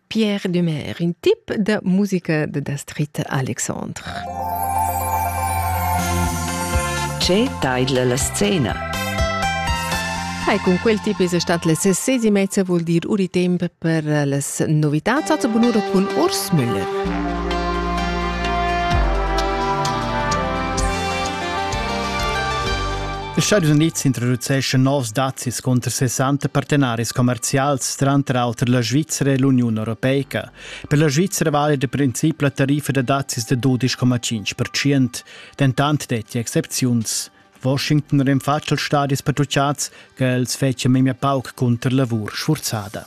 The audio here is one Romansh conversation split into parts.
Pierre Dumer, in tip da musica da Dastrit Alexandre. Che taidla la scena? Hai, cun quel tip es stat la sesesi mezza vuol dir uri temp per las novità. Zazza bunura cun Urs Müller. Les Stadis Unids introduceschan novs dazis cunter 60 partenaris commerzials, tranter auter la Svizzera e l'Uniun Europeica. Per la Svizzera vali da princip la tariffa da dazis da 12,5%, dentant detti excepziuns. Washington rinfatsch als stadis patrucciads che els fetschia memia pauc cunter lavur sfurzada.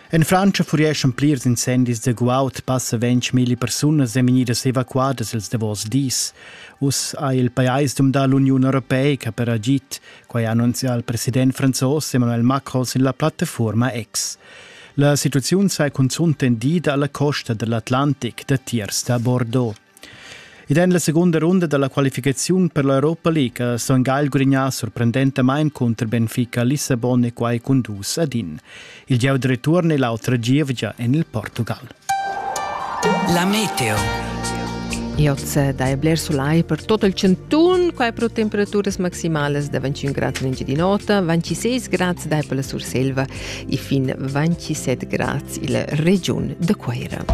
En Frantscha furieschan plirs incendis da guaud, passa ventg persunas e vegnidas evacuadas ils davos dis. Uss ha il pajais dumdà l'Uniun europeica per agid. Quai ha annunzià il president franzos Emmanuel Macron sin la plattafuorma X. La situaziun sai cunzunt tendida alla costa dell'Atlantic datiers da Bordeaux. Ed en la segunda runda dalla qualificaziun per l'Europa League ha Son Gagl gurignà sorprendentamain cunter Benfica Lissabon e quai cun dus ad in. Il gieu de return e l'autra gievgia en il Portugal. La meteo. Ioz dai bler solai per tot il centun, quai pro temperaturas maximales da 21 gradi in di nota, 26 gradi dai per la Surselva e fin 27 grads illa regiun da Cuaira.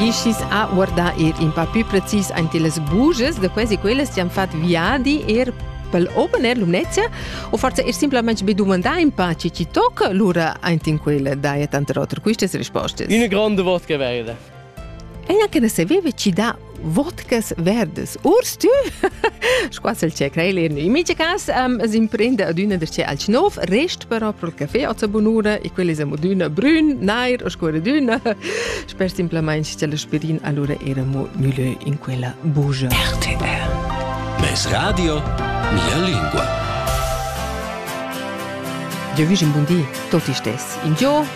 E schis a guardar er in pa più precis ante las buges, da quasi quelles ci han fat viadi er pel open air Lumnezia o forse er simplemente be domandar in pa ci ci tocca lura ante in quella daia tante otra queste risposte. Una grande voce verda. Ella che ne saveva ci da vodkas verdas. Urs, tu? Squassel ce creilin. In mica cas um, s'imprende adüna der ce alch nov, rest però pro il caffè o sa bunura e quelli sa adüna brün, nair o scuradüna. Sper simplamain che l'aspirin allora era mo mieux in quella bugia. RTR. Mes radio, mia lingua. Io vivo in buon di, tutti stessi. In Dio,